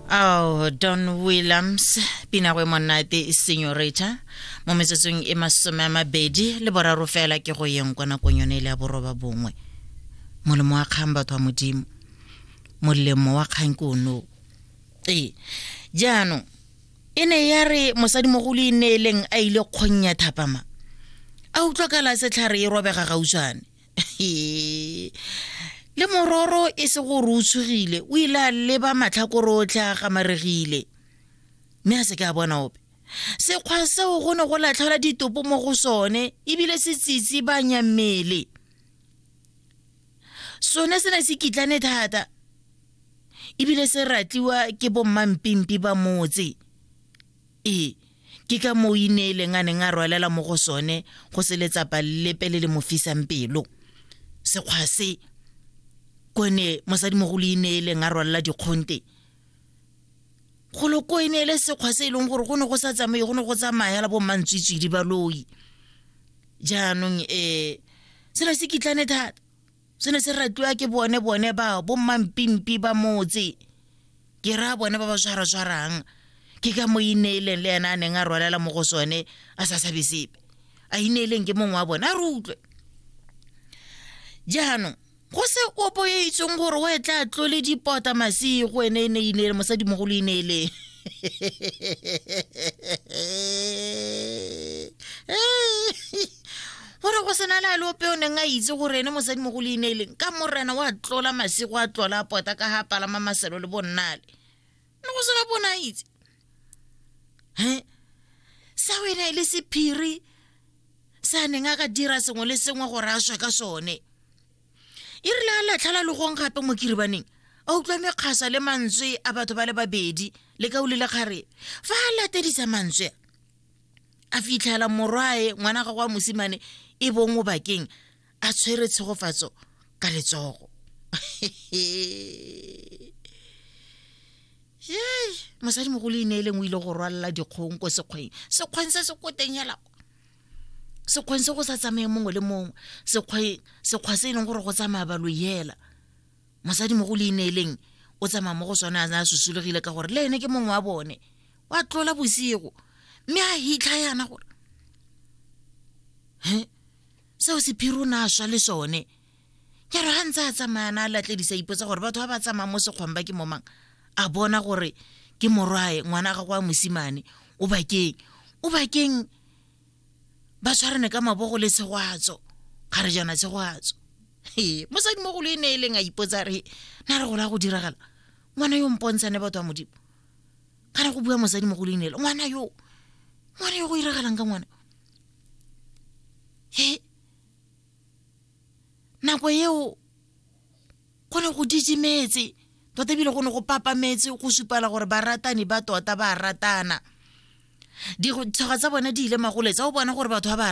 ao don williams pinagwe monate senyoreta mo metsotsong e masome a mabedi le boraro fela ke go yeng kwa nakong yone e le ya boroba bongwe molemo wa kgang batho wa modimo molemo wa kgang ke ono ee jaanong e ne ya re mosadimogolo e ne e leng a ile kgong ya thapama a utlwa kala setlhare e robega gautshwane le mororo e se gore o tshogile o ile a leba matlhakore otlhe a gamaregile mme a se ke a bona ope sekgwa seo go ne go latlhela ditopo mo go sone ebile se tsitsi ba nyammele sone se ne se kitlane thata ebile se ratliwa ke bommampimpi ba motse Ee, ke ka moo Ineeleng a neng a rwalela mo go sone go se letsapa lepe le le mo fisang pelo. Sekgwa se, ko ne mosadimogolo Ineeleng a rwalela dikgonte, golo ko e ne e le sekgwa se e leng gore go ne go sa tsamaye go ne go tsamaya la bommantswitswidi baloi jaanong um selo se kitlane thata se ne se ratiwa ke bone bone ba bommampimpi ba motse ke raya bone ba ba tshwaratshwarang ke ka mo ineeleng le ena a neng a rwalela mo go sone a sa sabe sepe a ineeleng ke mongwe wa bone a re utlwe jaanong go se opo e itseng gore o e tla tlole dipota masigo ene e ne ineele mosadimogolo ineeleng gore go sena le a le ope o neng a itse gore ene mosadi mo go leineleng ka morena wa tlola masego a tlola a pota ka ga palama maselo le bonnale ne go sena bona itse he sa o ene e le sephiri sa neng a ka dira sengwe le sengwe gore a swa ka sone e rile a latlha la logong gape mo kiribaneng a utlwa mekgasa le mantswe a batho ba le babedi le ka o lile kgare fa a latedisa mantswe a a fitlhela morwae ngwana ga kwa mosimane e bong o bakeng a tshwere tshegofatso ka letsogo yey mosadi mogolo e neeleng o ile go rwalela dikgong ko sekgweng sekgweng se se koteng yala sekgweng se go sa tsamaye mongwe le mongwe sekgwa se e leng gore go tsamaya balo yela mosadi mogolo e neeleng o tsamaya mo go sone a a susulegile ka gore le ene ke mongwe wa bone wa tlola bosigo mme a hitlha yana gore he seo sephiri o ne a swa le sone ke re ga ntse a tsamayana a latledisa ipotsa gore batho ba ba tsamayang mo sekgwang ba ke momang a bona gore ke morwae ngwana ga kwa mosimane o bakeng o bakeng ba tshwarane ka mabogo le tshegwatso ga re jana tshegwatso ee mosadi mogolo e ne e leng a ipotsa re na re gola go diragala ngwana yo mpontshane batho ba modimo ka re go bua mosadi mo go leinelo ngwana yo ngwana yo go iragalang ka ngwana he nako eo go ne go didimetse tota ebile go ne go papametse go supala gore baratani ba tota ba ratana ditshoga tsa bone di ile magoletse o bona gore batho ba ba